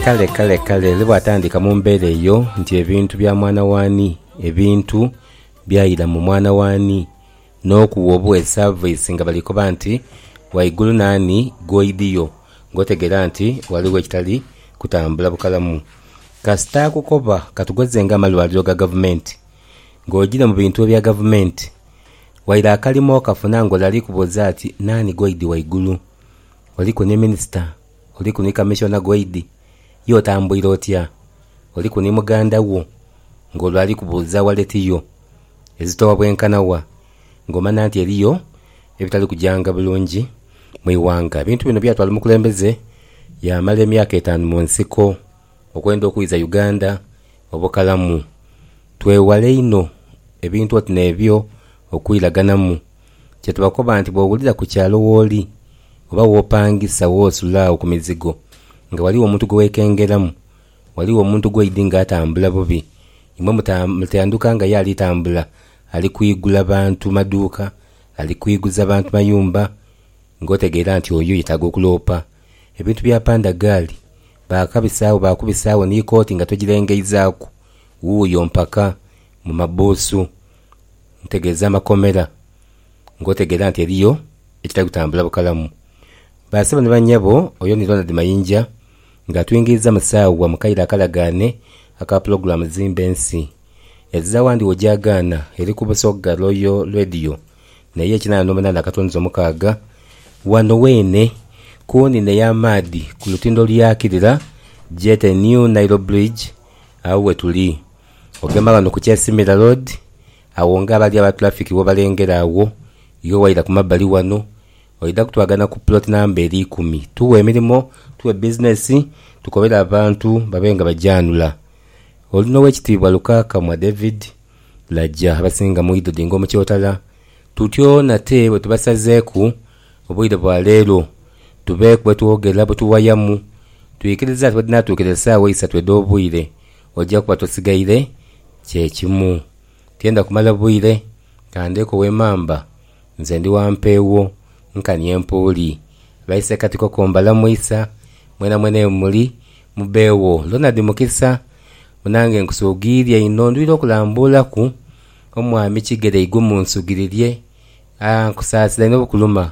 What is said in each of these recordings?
kale kale kale ni bwatandika mu mbeera eyo nti ebintu bya mwana w'ani, ebintu byaira mu mwana w'ani, n'okuwa obuwa esaviisi nga bali koba nti waigulu naani gw'oidhio ng'otegeera nti ghaligho ekitali kutambula bukalamu. Kasita akukoba katugeze nga amalwaliro ga gavumenti, ng'ogiire mu bintu ebya gavumenti waire akalimo okafuna ng'ole ali kubuuza ati naani gw'oidhi waigulu? Oliku ni minisita, oliku ni kamishona ghaidi, ye otambuire otya? Oliku ni muganda wo ng'olwo ali kubuuza waleti yo ezitowa bwenkana wa, ng'omanha nti eriyo ebitali kujanga bulungi mu ighanga. Ebintu bino byatwala omukulembeze yaamala emyaka etaanu mu nsiko okwenda okwiza Uganda obukalamu. Twewale inho ebintu oti n'ebyo okwiraganamu Kye tubakoba nti bw'owulira ku kyalo w'oli oba w'opangisa w'osula agho ku mizigo nga ghaligho omuntu gwe weekengeramu, ghaligho omuntu gw'oidhi nga atambula bubi, imwe mutandhuka nga ye ali tambula ali kwigula bantu maduuka, ali kwiguza bantu mayumba, ng'otegeera nti oyo yetaaga okuloopa. Ebintu bya pandagaali baakabisagho baakubisagho ni kooti nga togirengeizaaku, wuuyo mpaka mu mabuusu. ntegeeza amakomera ng'otegeera nti eriyo ekitali kutambula bukalamu. Ba sebo ni ba nyabo, oyo ni Ronald Mayinja ng'atwingiiza mu saawa mu kaire akalagaane aka pulogulaamu Zimba Ensi. Ezira wandi wo gyagaana eri ku Busoga Royal Radio naye kinaana n'omunaana akatunzi omukaaga. Wano weene ku nine y'amaadhi ku lutindo lw'akirira Jet New Nile Bridge agho we tuli. Ogema ghano ku Kyasimira Road, agho nga abali aba tulafiki bwobalengera agho, iwe waira ku mabbali ghano, oidha kutwagana ku puloti namba eri ikumi. Tugha emirimo, tugha bizinesi, tukobere abantu babe nga bagyanhula. Oli n'Owekitiibwa Lukakamwa David Laja abasinga mwidho Dinga Omukyotala. Tutyo nate bwe tubasazeeku obwire bwa leero tubeeku bwe twogera, bwe tuwayamu. Twikiriza nti bwedhinaatuukira esaawa isatu edh'obwire, Oja kuba tosigaire kye kimu. Tienda kumala bwire ka ndeeko wemamba nze ndi wa mpeewo nkani empuuli. Baise kati koko mbalamu isa mwenamwena ye muli mubeewo. Ronald Mukisa, Munange nkusuugiiria inho ndwire okulambuulaku Omwami Kigere igwe munsugirirye. Aa nkusaasira inho bukuluma.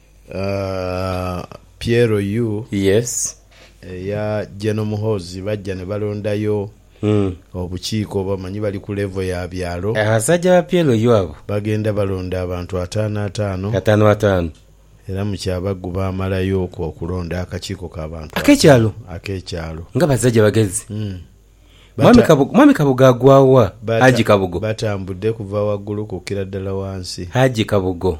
Piero U Yes. eya General Muhoozi bajja ne balondayo obukiiko oba omanyi bali ku level ya byalo. Abasajja ba Piero U abo. Bagenda balonda abantu ataano ataano. Ataano ataano. Era mu Kyabaggu baamalayo okwo okulonda akakiiko ka bantu ataano. Ak'ekyalo? Ak'ekyalo. Nga basajja bagezi. Mwami Kabugo, Mwami Kabugo agwa wa? Haji Kabugo. Batambudde kuva waggulu kukkira ddala wansi. Haji Kabugo.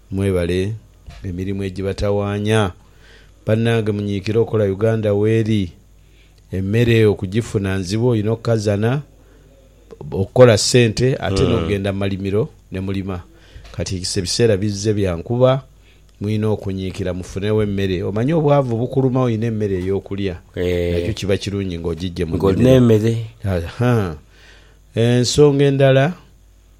Mwebale emirimu ejibatawanya banange munyikire okola Uganda weri emere okujifuna nzibu oyina okukazana okola sente ate nogenda mumalimiro nemulima kati ebiseera bizze byankuba muyina okunyikira mufunewo emere omanyi obwavu bukuluma oyina emere eyokulya nakyo kiba kirungi nga ojijje munimiro nga olina emere. Ensonga endala.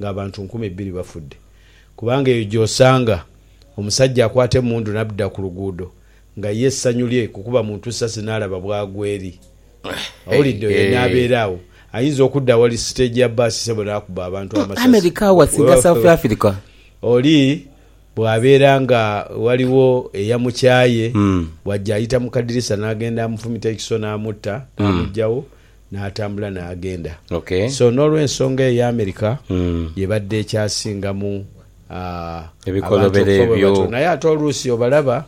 ng'abantu nkumi bbiri bafudde kubanga eyo gy'osanga omusajja akwata emmundu n'abda ku luguudo nga ye essanyu lye kukuba muntu ssasi n'alaba bw'agwa eri awulidde oyo n'abeera awo ayinza okudda awali siteegi ya bbaasi ssebo n'akuba abantu amasasi oli bw'abeera nga waliwo eyamukyaye bw'ajja ayita mu kadirisa n'agenda amufumita ekiso n'amutta n'amuggyawo N'atambula n'agenda. So n'olw'ensonga eyo America y'ebadde ekyasingamu abantu okufa bwe batyo. Naye ate oluusi obalaba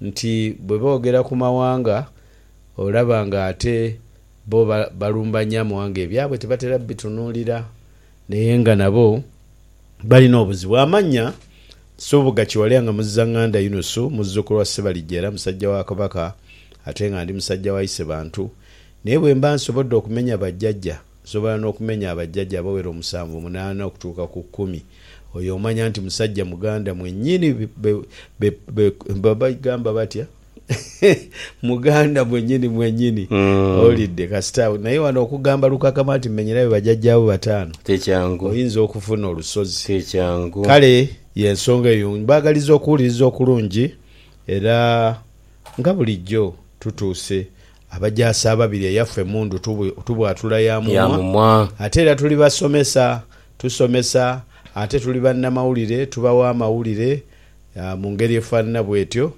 nti bwe boogera ku mawanga olaba ng'ate bo balumba nnyo amawanga ebyabwe tebatera bitunuulira naye nga nabo balina obuzibu. Amannya, Nsubuga Kiwalya nga Muzzanganda Yunusu, muzzukulu wa Ssebalijja era musajja wa Kabaka ate nga ndi musajja wa Isebantu. Naye bwe mba nsobodde okumenya bajjajja, nsobola n'okumenya abajjajja abawera omusanvu, munaana, okutuuka ku kkumi. Oyo omanya nti musajja muganda mwennyini be, be, be, be, bagamba batya? muganda mwennyini mwennyini. Owulidde? Kasita, naye wano okugamba lukakama nti, Mmenyerayo bajjajjaabo bataano, Ti kyangu. oyinza okufuna olusozi. Ti kyangu. Kale y'ensonga eyo mbaagaliza okuwuliriza okulungi, era, nga bulijjo, tutuuse. Abajaasi ababiri eyafa emundu tubwatula ya mumwa, ate era tuli basomesa, tusomesa, ate tuli bannamawulire, tubawa amawulire mu ngeri efaanana bwetyo.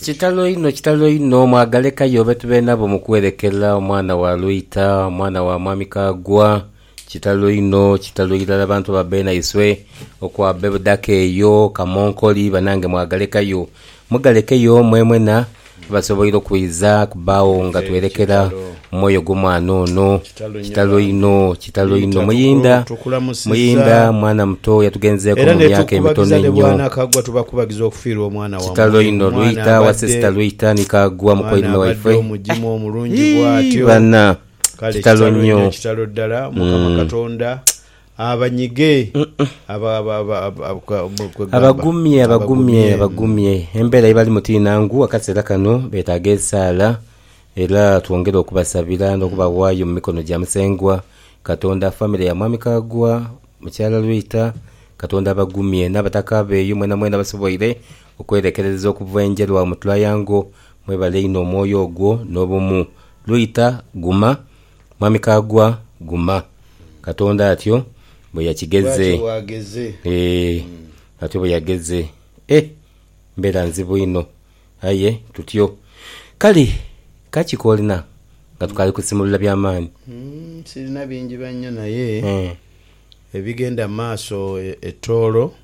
Kitalo inho, kitalo inho! Mwagalekayo betube nabo mu kwerekerera, omwana wa Lwita, omwana wa Mwami Kaggwa. Kitalo inho kitalo irala bantu ba Beena iswe okwa Bebudaaka eyo, Kamonkoli banange mwagalekayo. Mugalekeyo mwemwena abasoboire okwiiza kubaagho nga twerekera mwoyo gwo mwana ono. Kitalo inho kitalo inho Muyinda Muyinda mwana muto yatugenzeeku mu myaka emitono einho. Kitalo inho Lwita wa sister Lwita ni Kaggwa mukoirime waife. Yii! Bana! Kale Kitalo kitalo inho, nyo. kitalo ddala. Mukama Mm. Katonda abanyige aba- aba- aba- aba- aba- kwa- mu- kwe gamba. Abagumye, abagumye, Abagumye. abagumye. Embeera gye balimu ti nnangu. Akaseera kano beetaaga esaala era twongere okubasabira n'okubawaayo mu mikono gya Musengwa Katonda. Famire ya Mwami Kaggwa, Mukyala Rwita, Katonda abagumye. N'abataka be eyo mwenamwena abasoboire okwerekerereza okuva e Njeru awo mu Triangle, Mwebale inho omwoyo ogwo nobumu. Lwita guma mwami Kaggwa guma. Katonda atyo bweyakigeze eeh atyo bweyageze eeh mbera nzibu inho aye tutyo kale kaki kolina nga tukali kusimulula byamaani. Sirina bingi bannyo naye ebigenda maaso e Tooro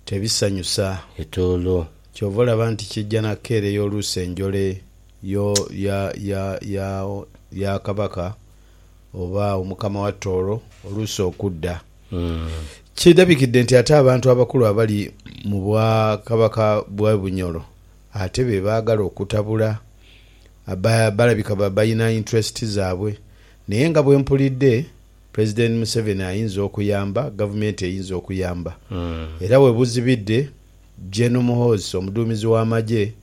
tebisanyusa. E Tooro. Kyova olaba nti kija na keereya oluusi enjole yo ya ya ya ya Kabaka oba Omukama wa Tooro oluusi okudda. Kidhabikidde nti ate abantu abakulu abali mu bwa Kabaka bwa Bunyoro ate be baagala okutabula. Ba balabika ba balina interest zaabwe. Naye nga bwe mpulidde, President Museveni ayinza okuyamba, Gavumenti eyinza okuyamba. Era we buzibidde, Gen Muhoozi omuduumizi w'amagye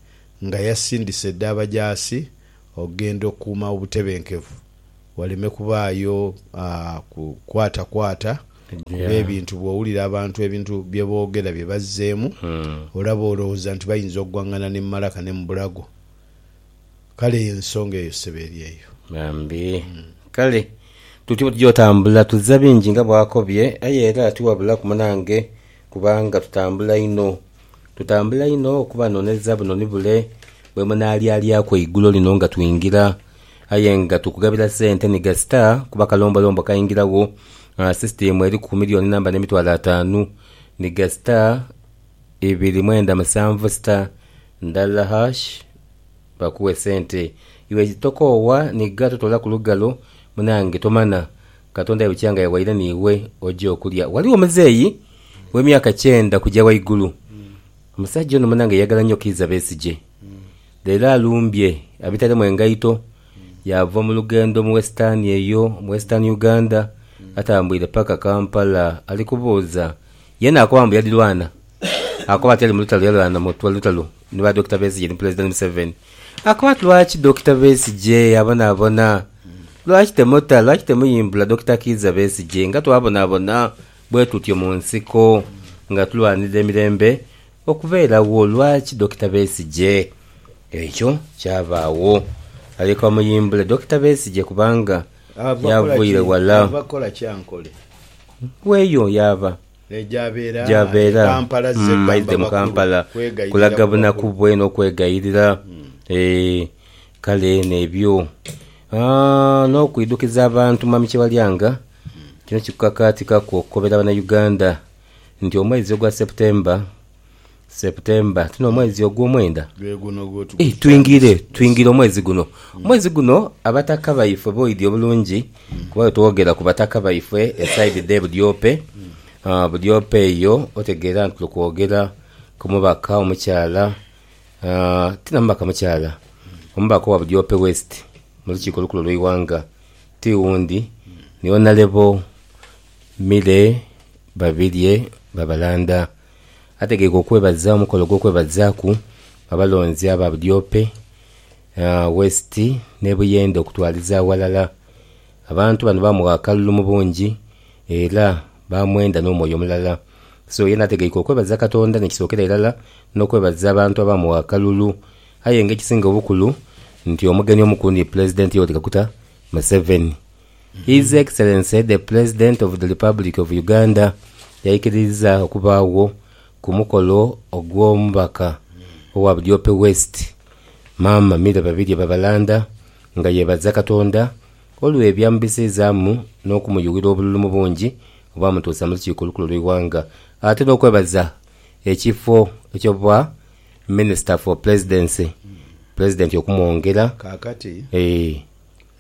nga yasindise dda abajaasi okugenda okukuuma obutebenkevu waleme kubaayo kukwatakwata kuba ebintu bw'owulira abantu ebintu bye boogera bye bazzeemu olaba olowooza nti bayinza okugwang'ana ne mu malaka ne mu bulago kale ensonga eyo ssebo eri eyo. Bambi. Kale tutyo bwe tugya otambula tuzza bingi nga bw'akobye aye era tiwabulaku munange Kubanga tutambula inho, tutambula inho okubanoneza buno ni bule bwe munaalyalyaku eigulo lino nga twingira. Aye nga tukugabira sente ni gasita kuba kalombolombo kaingiragho, sisitiimu eriku ku miliyooni namba n'emitwalo ataanu ni gasita ibiri mwenda musanvu sita ndala hash bakuwe sente. Iwe tokoowa ni gha totoolaku lugalo munange tomana. Katonda aye bukyanga yawaire n'iwe oje okulya. Ghaligho omuzeeyi w'emyaka kyenda kugya ghaigulu. Omusajja ono munange yayagala nnyo Kiiza Besigye. Leero alumbye abitalemu engaito, yaava mu lugendo mu Western eyo, mu Western Uganda, atambuire paka Kampala ali kubuuza. Ye naakoba mbu yadhirwana. Akoba ati ali mu lutalo yalwana mu lutalo ni ba Dokita Besigye ni Pulezidenti Museveni. Akoba ati lwaki Dokita Besigye abonaabona? Lwaki temutta, lwaki temuyimbula Dokita Kiiza Besigye nga twabonabona bwetutyo mu nsiko nga tulwanirira emirembe okubeerawo, lwaki Dokita Besigye? Ekyo kyabaawo. Alyoke bamuyimbule Dokita Besigye kubanga yavaire wala. Ava kukola ki Ankole? Weeyo yaava. Naye gy'abeera? Gy'abeera. E Kampala azze kwamba bakulu kweghayirira mu bakulu. Aidhe mu Kampala kulaga bunaku bwe n'okwegayirira. Eeh. Kale n'ebyo, n'okwidhukiza abantu Mwami Kyewalyanga, kino kikukakaatikaku okukobera Banauganda nti omwezi ogwa September, September, ti n'omwezi ogw'omwenda? Ii, twingire, twingire omwezi guno. Omwezi guno Abataka baifwe b'oidhi obulungi kuba bwetwogera ku Bataka baifwe esaidi dhe Budyope, Budyope eyo otegeera nti tuli kwogera ku mubaka omukyala Tina mubaka mukyala, omubaka owa Budiope West mu lukiiko olukulu olw'eighanga ti wundi ni Honalebo Milly Babirye Babalanda. Ategeike okwebaza omukolo gw'okwebazaaku abalonzi aba Budiope West n'e Buyende okutwaliza aghalala. Abantu bano baamugha akalulu mu bungi era baamwenda n'omwoyo mulala. So ye n'ategeika okwebaza Katonda n'ekisookera irala n'okwebaza abantu abaamuwa akalulu. Aye nga ekisinga obukulu nti omugenyi omukulu ni Pulezidenti Yoweri Kaguta Museveni. His Excellency the President of the Republic of Uganda yaikiriiza okubaagho ku mukolo ogw'omubaka owa Budiope West, Maama Milly Babirye Babalanda nga yeebaza Katonda Olwe byamubisizaamu n'okumuyughira obululu mu bungi obwamutuusa mu lukiiko olukulu olw'eighanga ate n'okwebaza ekifo eky'obwa Minister for Presidency, Pulezidenti okumwongera. Kaakati, Eeh.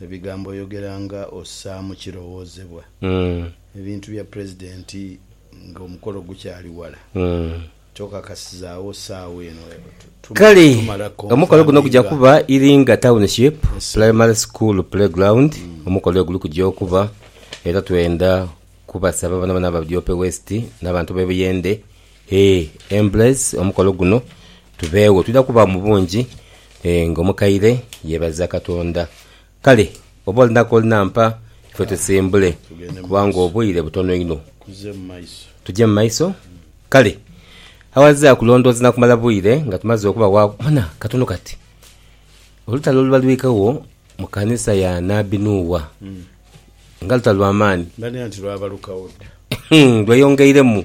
ebigambo oyogera nga ossaamu kirowoozebwa. Ebintu bya Pulezidenti ng'omukolo gukyali wala. Kale omukolo guno guja kuba Iringa Township Primary School Playground, omukolo weguli kuja okuba era twendha kubasaba bonabona aba Bujoope West n'abantu b'e Buyende ee embrace omukolo guno tubeegho. Twidha kuba mu bungi ng'omukaire yeebaza Katonda Kale bw'oba olina k'oli na mpa ife tusimbule, kubanga obwire butono inho. Tuje mu maiso? Kale, aghazira kulondooza na kumala bwire nga tumaze okubawaagho, bona, katono kati, olutalo oluba lwikagho mu kanisa ya nabbi Nuuwa, nga lutalo lwa maani, lweyongeiremu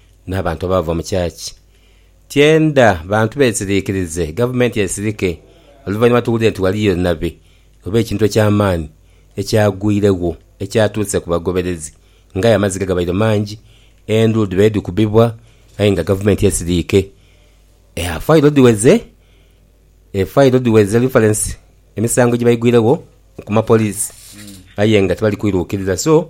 N'abantu abaava mu church tyendha bantu beesiriikirize, gavumenti esirike oluvannyuma tuwulire nti ghaliyo nabi oba ekintu eky'amaani ekyagwiregho ekyatuuse ku bagoberezi. Ng'aye amaziga gabaire mangi, endulu dhibaire dhikubibwa aye nga gavumenti esiriike. Eya fayiro dhiweze, efayiro dhiweze lifalensi, emisango gye baigwiregho ku mapoliisi aye nga tibali kwiruukirira so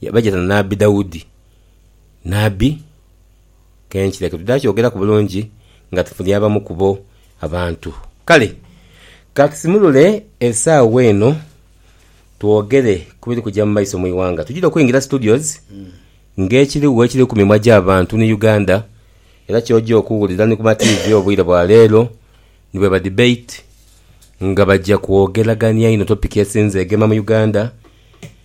Yabajana na Nabbi Daudi. Nabbi, ke nkira ketudaakyogeraku bulungi nga tufunye abamu ku bo abantu. Kale ka tusimulule esaawa eno twogere ku biri kuja mu maiso mu ighanga. Tujira okwingira studios ng'ekirigho ekiri ku mimwa gy'abantu ni Uganda era ky'oja okuwulira ni ku ma tiivi obwire bwa leero ni bwe ba debate nga baja kwogeragania inho topiki esinze egema mu Uganda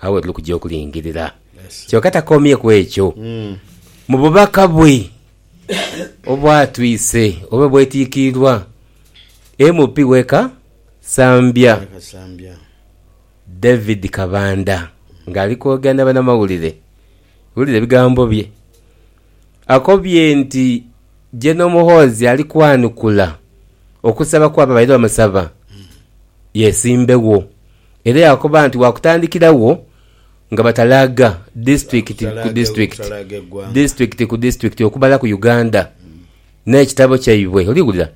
Agho we tuli kugya okulingirira. Kyoka takomye ku ekyo. Mu bubaka bwe obwatwise oba obwetiikiirwa MP w'e Kasambya, David Kabanda ng'ali kwogera na banamawulire, wulira ebigambo bye. Akobye nti Gen Muhoozi ali kwanukula okusaba kw'abo abaire bamusaba yesimbewo. era yaakoba nti waakutandikiragho nga batalaaga disitulikiti ku disitulikiti, disitulikiti ku disitulikiti okumala ku Uganda n'ekitabo kyaibwe, oli wulira,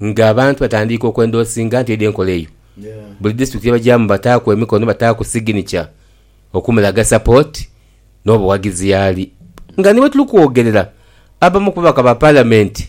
nga abantu batandiika okwendoosinga nti eidha enkola eyo. Buli disitulikiti ye bagyamu bataaku emikono, bataaku siginica okumulaga sapooti n'obuwagizi y'ali. Nga ni bwe tuli kwogerera, abamu ku babaka ba Palamenti,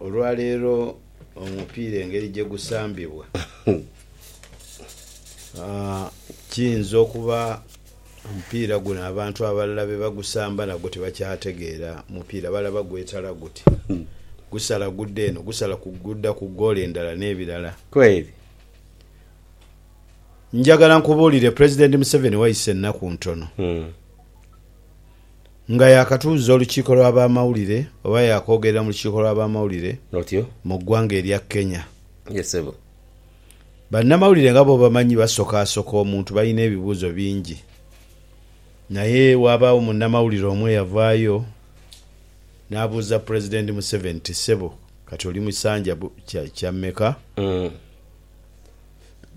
Olwaleero omupiira engeri gye gusambibwa kiyinza okuba omupiira guno abantu abalala be bagusamba nagwo tibakyategeera mupiira, balaba gwetala guti, gusala gudda eno, gusala gudda ku ggoolo endala n'ebirala. Njagala nkubuulire Pulezidenti Museveni wayisa ennaku ntono Nga yaakatuuzza olukiiko lw'abamawulire oba yaakwogerera mu lukiiko lw'abamawulire mu ggwanga erya Kenya. Bannamawulire nga bw'obamanyi basokaasoka omuntu balina ebibuuzo bingi naye waabaawo munnamawulire omu eyavaayo n'abuuza Pulezidenti Museveni nti, Ssebo kati oli mu kisanja kya mmeka?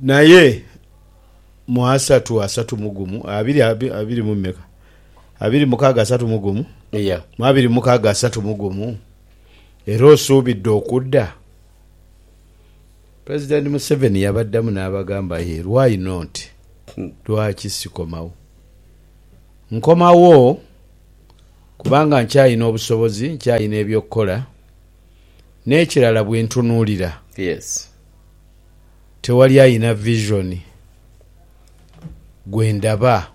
Naye mu asatu, asatu mu gumu, abiri, abiri mu mmeka? abiri mu mukaaga asatu mu gumu Yeah. mu abiri mu mukaaga asatu mu gumu era osuubidde okudda? Pulezidenti Museveni yabaddamu n'abagamba ye why not, lwaki sikomawo? Nkomawo kubanga nkyalina obusobozi, nkyalina eby'okukola n'ekirala bwe ntunuulira Yes. tewali alina vision gwe ndaba.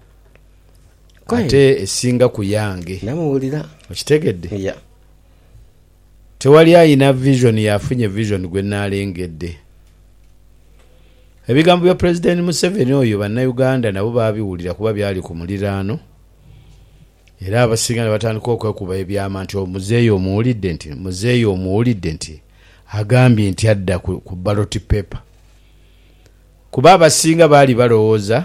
ate esinga ku yange. Namuwulira. Okitegedde? Yeah. Tewali alina vision y'afunye vision gwe nnaalengedde. Ebigambo bya Pulezidenti Museveni oyo Bannayuganda nabo baabiwulira kuba byali ku muliraano era abasinga ne batandika okwekuba ebyama nti omuzeeyi omuwulidde nti muzeeyi omuwulidde nti agambye nti adda ku ballot paper kuba abasinga baali balowooza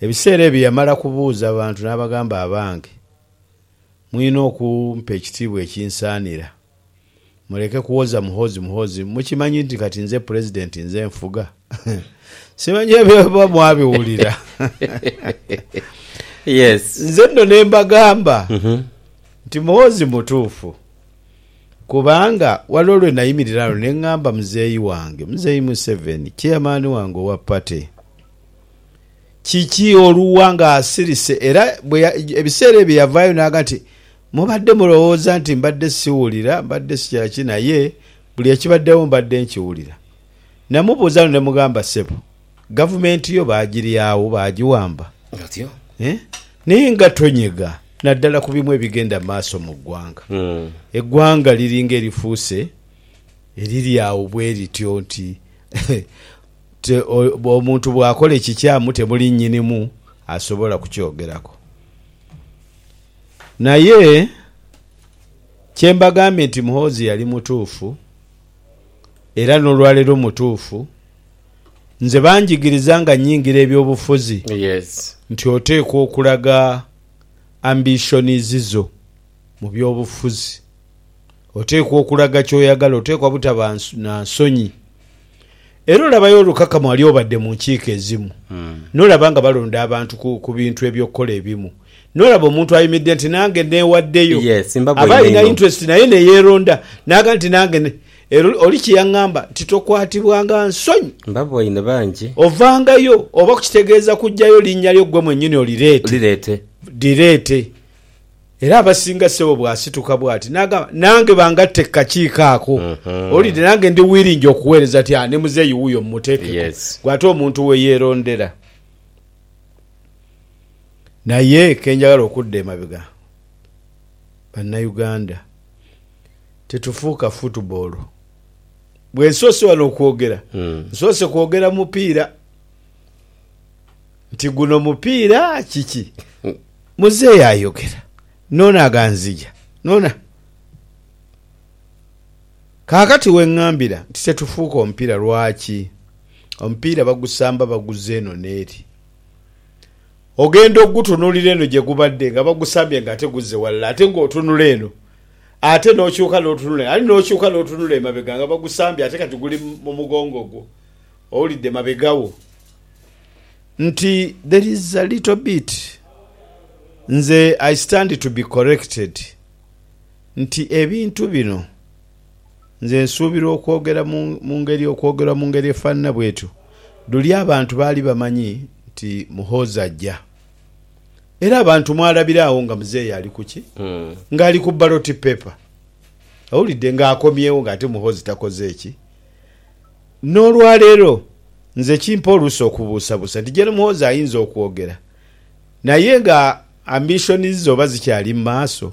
Ebiseera ebyo yamala kubuuza abantu n'abagamba, Abange, mwine okumpa ekitiibwa ekinsaanira. Muleke kuwoza Muhoozi Muhoozi. Mukimanyi nti kati nze Pulezidenti, nze nfuga? Simanyi ebyo oba mwabiwulira. Nze nno ne mbagamba nti Muhoozi mutuufu. Kubanga waliwo lwe nayimirira ghano ne ngamba muzeeyi wange, Muzeeyi Museveni, Chairman wange owa Party, kiki olugha ng'asirise era bwe ebiseera ebyo yavaayo n'aga nti mubadde mulowooza nti mbadde siwulira, mbadde sikya ki naye buli ekibaddewo mbadde nkiwulira. Namubuuza luno ne mugamba, Ssebo, Gavumenti yo baagiryagho, baagiwamba. Batyo. Eeh, naye nga tonyega naddala ku bimu ebigenda mu maaso mu ggwanga. Eggwanga liringa erifuuse eriri agho bwe lityo nti te, omuntu bw'akola ekikyamu temuli nnyinimu asobola kukyogerako. Naye kye mbagambye nti Muhoozi yali mutuufu era n'olwaleero mutuufu Nze banjigiriza nga nyingira eby'obufuzi nti oteekwa okulaga ambitions zo mu by'obufuzi. Oteekwa okulaga ky'oyagala, oteekwa butaba na nsonyi. Era olabayo olukakama wali obadde mu nkiiko ezimu n'olaba nga balonda abantu ku bintu eby'okukola ebimu, n'olaba omuntu ayimidde nti nange neewaddeyo. Aba alina interest naye ne yeeronda n'aga nti nange. Era oli kye yaŋŋamba nti, Tokwatibwanga nsonyi. Mbaboine bangi. Ovangayo, oba ku kitegeeza kuggyayo linnya lyo ggwe mwennyini olireete. Lireete. Lireete. Era abasinga ssebo bw'asituka bw'ati n'agamba, Nange bangatte ku kakiiko ako. Owulidde? Nange ndi wiringi okuweereza ati, Ah, ne muzeeyi wuuyo mumuteekeko. Yes. Ggwe ate omuntu we yeerondera. Naye ke njagala okudda emabega, Bannayuganda. titufuuka football. Bwensoose wano okwogera nsoose kwogera mupiira nti guno mupiira kiki. Muzeeyi ayogera n'ono aganzigya n'ono a. Kaakati wengambira nti tetufuuka omupiira lwaki? Omupiira bagusamba baguza eno n'eri. Ogenda okugutunulira eno gye gubadde nga bagusambye nga ate guzze walala ate nga otunula eno ate n'okyuka n'otunula eno ali n'okyuka n'otunula emabega nga bagusambye ate kati guli mu mugongo gwo owulidde mabega wo nti there is a little bit nze I stand to be corrected nti ebintu bino Nze nsuubira okwogera mu ngeri okwogerwa mu ngeri efaanana bw'etyo luli abantu baali bamanyi nti Muhoozi aja. Era abantu mwalabira agho nga muzeeyi ali ku ki? Ng'ali ku ballot paper. Owulidde? Ng'akomyewo ng'ate Muhoozi takoze ki? N'olwaleero nze kimpa oluusa okubuusabuusa nti Gen Muhoozi ayinza okwogera naye nga ambitions ze oba zikyali mu maaso?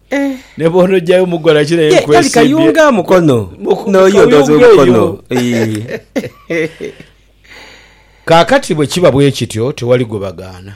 Ne bw'onojayo mughala kira ye nkwesimbye. Kali kayunga mukono. N'oyo odoze omukono. Kaakati bwe kiba bwe kityo, tewali gwe bagaana.